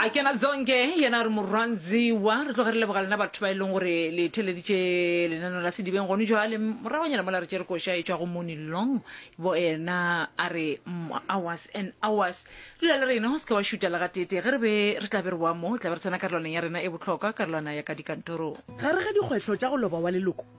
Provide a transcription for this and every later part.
a ke na letsonke yena re morwanziwa re tloge re leboga lena batho ba e leng gore le theleditše lenano la sedibeng gone joale moragonyana mola re tšere koša e tšwa go moni long bo ena a re mm, hours and hours dula le rena go se ke wa šuta le gatete ge re be re tla be re boa mo tla be re tsena karolwaneng ya rena e bohlokwa karolwana ya ka dikantorong gare ga dikgwetlho tša go loba wa leloko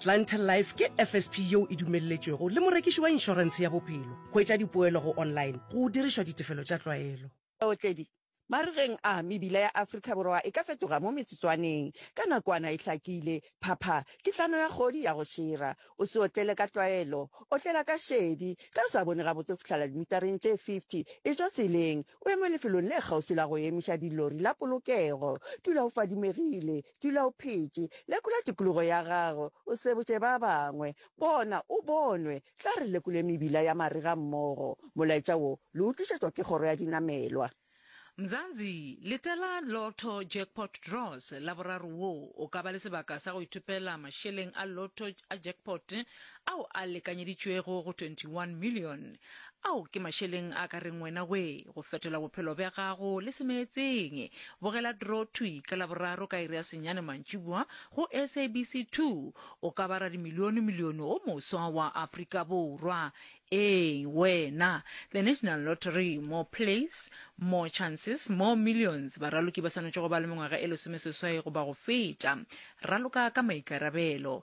Clientele Life ke FSP yeo e dumelletšwego le morekiši wa inšorentshe ya bophelo. Hwetša dipoelo go online go dirišwa ditefelo tša tlwaelo. Baotledi, Marigeng a, mebila ya Afrika Borwa e ka fetoga mo metsotswaneng. Ka nakwana e hlakile, phapha ke tlano ya kgodi ya go šira. O se otlele ka tlwaelo, otlela ka šedi. Ge o sa bone gabotse go fihlela dimitareng tše 50, e tšwa tseleng, o eme lefelong le kgauswi la go emiša dilori la polokego. Dula o fadimegile, Dula o phetše. Lekola tikologo ya gago, o sebotše ba bangwe. Bona o bonwe. Tla re lekole mebila ya marega mmogo. Molaetša wo le o tlišetšwa ke Kgoro ya Dinamelwa. Mzanzi, letela Lotto Jackpot Draws la boraro wo o ka ba le sebaka sa go ithopela mašeleng a lotto a jackpot ao a lekanyeditšwego go 21 millione. Ao ke mašeleng a ka reng wena we go fetola bophelo bja gago le semeetseng. Bogela Draw Thwi ka Laboraro ka iri ya senyane mantšiboa go SABC 2, o ka ba radimilionemilione o moswa wa Afrika Borwa. Ee, wena! The National Lottery, More Plays, More Chances, More Millions. Baraloki ba swanetše go ba le mengwaga e lesomeseswai goba go feta. Raloka ka maikarabelo.